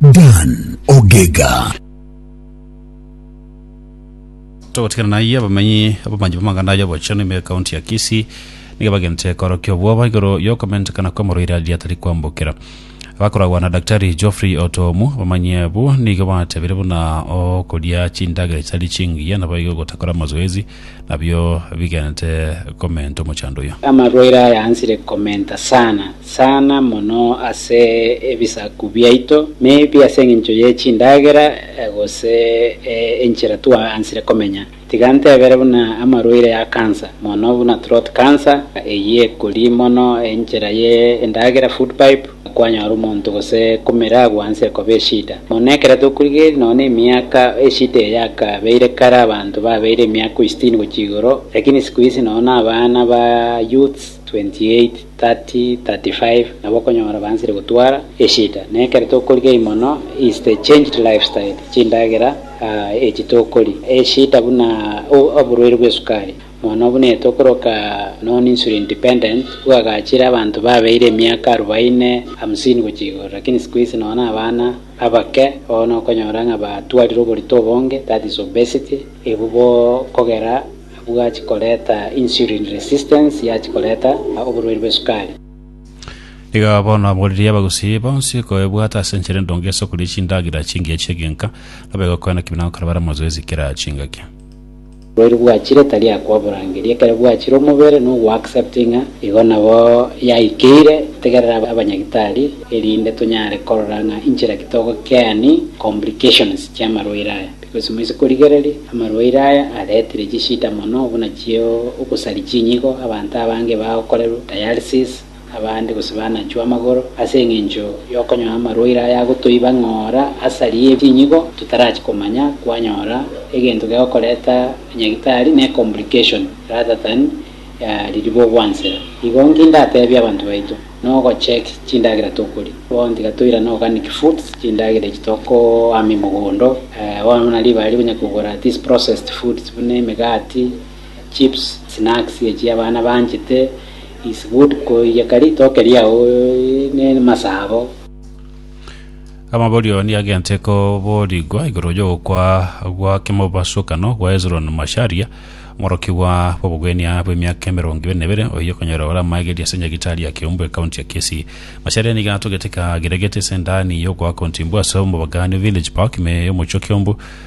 Dan Ogega. Togotigana naiye, abamenyi abamanyi b'amang'ana aya obochenu ime ekaunti ya Kisii nigo bagentire korokia obwoba igoro y'okomentekana kw'omorwaire aria atari kwambokera. Abakoragwa na Daktari Geoffrey Otomu, abamanyi abwo nigo batebire buna okoria chindagera chitari chingiya naboigo gotakora amazoezi nabio bigenete komenta omochando oyio. Amarwaire ayansire komenta sana sana mono ase ebisaku biaito, maybe ase engencho ye chindagera gose enchera twayansire komenya. Tiga ntebere buna amarwaire a cancer mono buna throat cancer, eyio ekori mono enchera ye endagera, food pipe, Kwanyora omonto gose komeragwa onsi ekoba eshida mono. Ekero tokorigereria nonya nemiaka eshida eye yakabeire kare abanto babeire emiaka oi sitini gochia igoro, lakini siku hizi nonya na abana ba youths 28, 30, 35 nabo okonyora baanchire gotwara eshida. Na ekero tokorigereria mono is the changed lifestyle, chindagera echi tokoria, eshida buna oborwaire bwa esukari. Bono buna etokoroka non insulin independent, bwagachire abanto babeire emiaka arubaine, hamsini gochia igoro, lakini siku hizi nonya na abana abake oo nokonyora ng'a batwarire oborito obonge, that is obesity, ebu bo kogera bwachi koreta insulin resistance yachi koreta oborwaire bwe sukari. Iga bono aboririe abagusii bonsi koebwata ase enchera endonge ase okoria chindagera chingiya chi'egenka, nabo egokwana ki buna gokora bare amazoezi kera chingaki. Oboiri bwachire tari akoborangeria, ekero bwachire omobere nogoaccepti ng'a igo nabo yaikeire. Tegerera abanyagitari erinde tonyare korora ng'a inchera ki togokeani complications chi'amarwaire aya, because moise korigereria amarwaire aya aretire chishida mono buna chi'ogosari chinyigo, abanto abange bagokorerwa dialysis, abande gose banachwe amagoro, ase engencho y'okonywa amarwaire aya agotoiba ng'ora asari ye chinyigo totarachi komanya kwanyora egento gegokoreta nyagitari ne complication rather than riribwo gwansera. Igo nki ndatebie abanto baito? Nogo check chindagera tokoria. Bono tiga toirane organic foods, chindagera echi tokoama emogondo. Bono buna ribare rikonyakogora these processed foods buna emegati, chips, snacks echi abana banchete is good koiyeka ritoke riao ne masaa abo. Amaborio nigo agente koboorigwa igoro y'ogokwa gwa kemobasokano gwa Hezroni Masharia, omorokigwa bw'obogwenia bw'emiaka emerongo ibere na ebere, oyio okonyora ore amaegeria ase nyagitari ya Kiumbu, ekaunti ya Kisii. Masharia nigo atogete kagiregete ase endani y'ogoaka ontimbu ase omobagaanio Village Park, ime y'omochie o Kiumbu.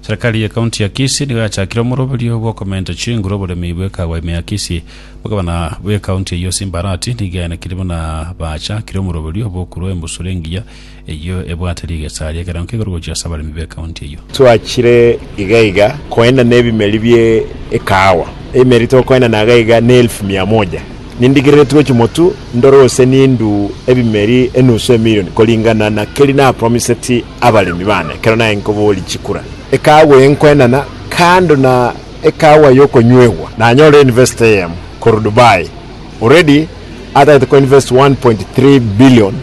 Serikali ye county ya Kisii nigo yachakire omoroberio bw'okomenta chinguru oboremi bw'ekawa ime ya Kisii. Bogabana bwe county eyio Simba Arati nigo yaenekire buna bachakire omoroberio bw'okorua embusuro engiya eyio ebwate rigesa ri'ekerengo k'igoro gochia ase abaremi be county eyio. Twachire iga iga koenana ebimeri bie ekahawa, ebimeri tokoenana iga iga ne elfu mia moja. Nindigerere tue chimotu ndore gose nindu ebimeri enusu emirioni koringana na keri napromiseti abaremi baane ekero naye nkoboria chikura, ekaagwa y'enkoenana, kando na ekaagwa y'okonywegwa. Nanyorire university eyemo korwa Dubai already atagete ko invest 1.3 billion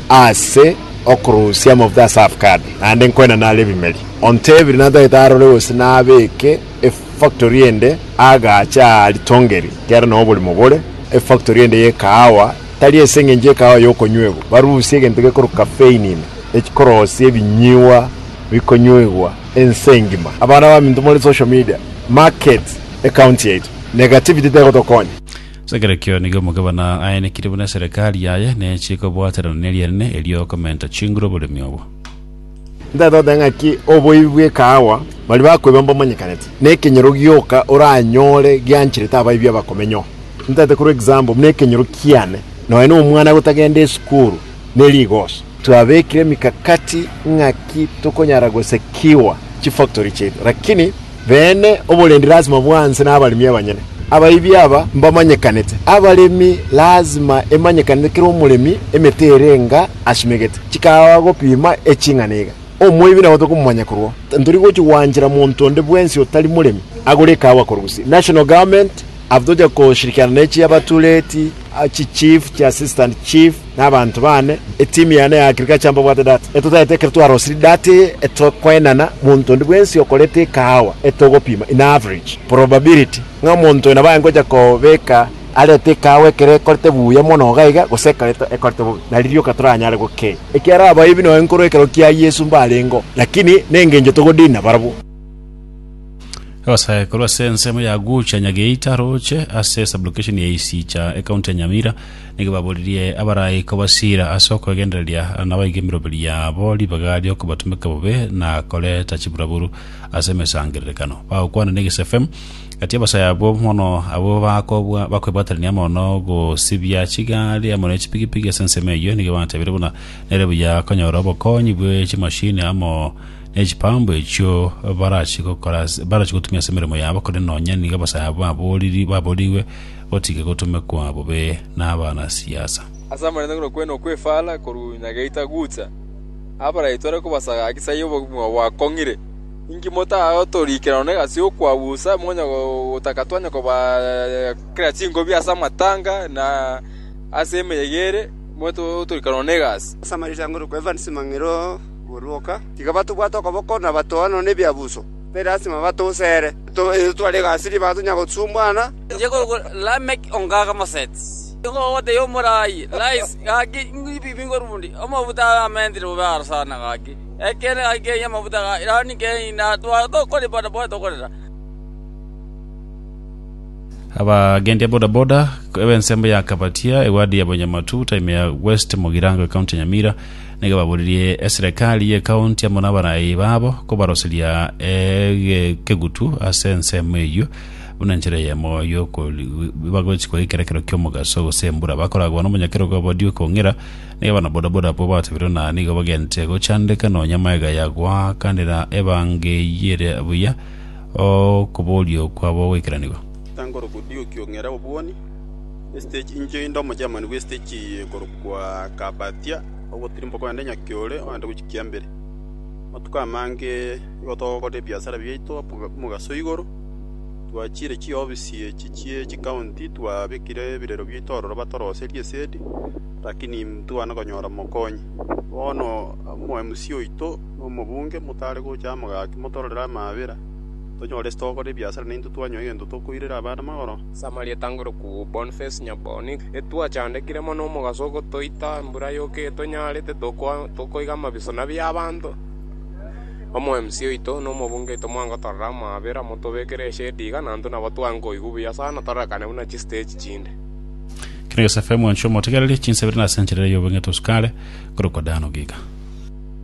ase okorusia amafuta ase avocado naende nkoenana are ebimeri. Ontebire natagete arore gose nabeke efactory ende agache aa ritongeri kiagera noo oborimo bore efactory ende y'ekahawa. tari ase engencho y'ekaao y'okonywa ego, barusie egento gekorwa kafeinine, ekoroosia ebinyigwa bikonywegwa ense engima. Abana baminto more social media, market ecounty yaito, negativity tegotokonya. Ase ekerekio nigo omogabana aenekire buna eserekari yaye nechikobwaterana nerianene erio okomenta chinguru oboremi obo. Ntatogoteba ng'aki oboibi bw'ekaawa baria bakoiba mbomanyekanete, na ekenyoro gioka oranyore giancherete abaibi abakomenyo. Ntate korwa example buna ekenyoro kiane, nonya na omwana gotagenda esukuru ne rigoso. Twabekire emikakati ng'aki tokonyara gosekiwa chifactory chiaito, lakini. beene, oborendi lasima bwanse nabaremi abanyene. Abaibi aba mbamanyekanete. Abaremi lasima emanyekanete kera omoremi emete ere enga asimegete. Chikawa gopima eching'ana iga. Omoibi nabo tokomomanya korwao. Ntori gochia gwanchera monto onde bwensi otari moremi agore ekawa korwa Gusii. National Government aba tochia koshirikiana ne chiabatureti, chi chief, chi assistant chief, nabanto baane, etimu yane ya agriculture mbabwate data, na totaete ekero twarosirie data eye etokoenana monto onde bwensi okoreta ekahawa etogopima in average probability ng'a omonto oyo nabo aye ngocha kobeka arete ekahawa ekero ekorete buya mono iga iga gose ekero ekorete bobe nari rioka toranyare gokenya ekiara abayibi noyo nkorwa ekero kia Yeso mbarengeo lakini nengencho togodinina barabwo. Abasae korwa ase ensemo ya Agucha Nyageita aroche ase sublocation ya Isiicha ecounty ya Nyamira, Nigo baboririe abaraiko basiira ase okwegendereria nabaige emiroberi yabo ribaga ri'okobatumeka bobe na koreta chiburaburu ase emesangererekano. Bagokwana negesefem gati y'abasaya abwo mono abwo bakobwa bakwebwaterania amo nogosibia chigari amo ne chipigipigi ase ensemo eyio. Nigo batebire buna nere buya konyora obokonyi bwe chimashini amo ne chipambu echio barachigokora barachigotumia ase emeremo yabo, korende nonya nigo abasaya abwo baboriri baborigwe Otige gotomekwa bobe nabana siasa. Ase amarenta ng'ina okwene okw'efaara korwa nyageita gucha abarai tore kobasaga gaki sai obogima bwakong'ire. Inki motatorikire nonya egasi y'okwausa, monya gotaka twanya kobakera chingobi ase amatanga na ase emeyega ere, monya totorikire nonya egasi? Ase amarenta ng'ina okw'efaara chimang'ere oborwoka, tiga batobwate okoboko na batoa nonya ebiabuso, mbe lasima batouse ere. Etware egasi ribaga tonya gosumbwana. Inche ngokora Lameki ongaga moseti. Nigo ogotebia omoraai, Rise, gaki ng'ibibie ngorundi amafuta amentire bobe aro sana gaki, ekeene gaki keiyo amafuta ga Irani keiyo, na tware tokoripa na bobe tokorera. Abagendia bodaboda b'ensemo ya Kabatia egwadi ya Bonyamatu time ya West Mugirango ekaunti ya Nyamira nigo baboririe eserekari y'ekaunti amo n'abarai babo kobaroseria ekegutu ase ensemo eyio Buna nchera eyemo y'okorigwa bagochikwa gekerekero ki'omogaso, gose embura, bakoragwa nomonyakero bwa bodio ekong'ira, nigo abana-bodaboda abwo batebirekwa na nigo bagente gochandeka nonya maega ya goakanera ebango eyio ere buya okoborio kwabo goikeranigwa. Etankorokwa Diu Kiong'ira Obwuoni, Esiteji Inche inde Omogermani bw'esiteji eye ekorokwa Carpathia, ogotirimba kwende nyakia ore oende gochia kiambere. Amatuko amange igo togokora ebiasara biaito omogaso igoro, Twachiire chiofisi echi chie chikaunti, twabekire ebirero bi'etorero batoroserie esegi, lakini ntibwana konyora mokonyi. Bono omoMC oito na omobunge motare gocha amo gaki motororere amaabera, tonyore ase togokora ebiasara naintwe twanyoe egento tokoirera abana magoro. Samaria etangire kobua Boniface Nyaboni, Etwachandekire mono omogaso ogotoita embura yoka eyo tonyarete, tokoiga amabiso nabi y'abanto. Omoemsi oito, na omobunge oito mwangotorera amaabera, motobekere eshedi iga, na intwe nabo twankoigwa buya sana, tororekane buna chisteji chinde. Kina Yosefu, mwanchwa omotigereri, chinsa ibere na senchari ere y'obong'iti o sukari, korokwa Dano Giga.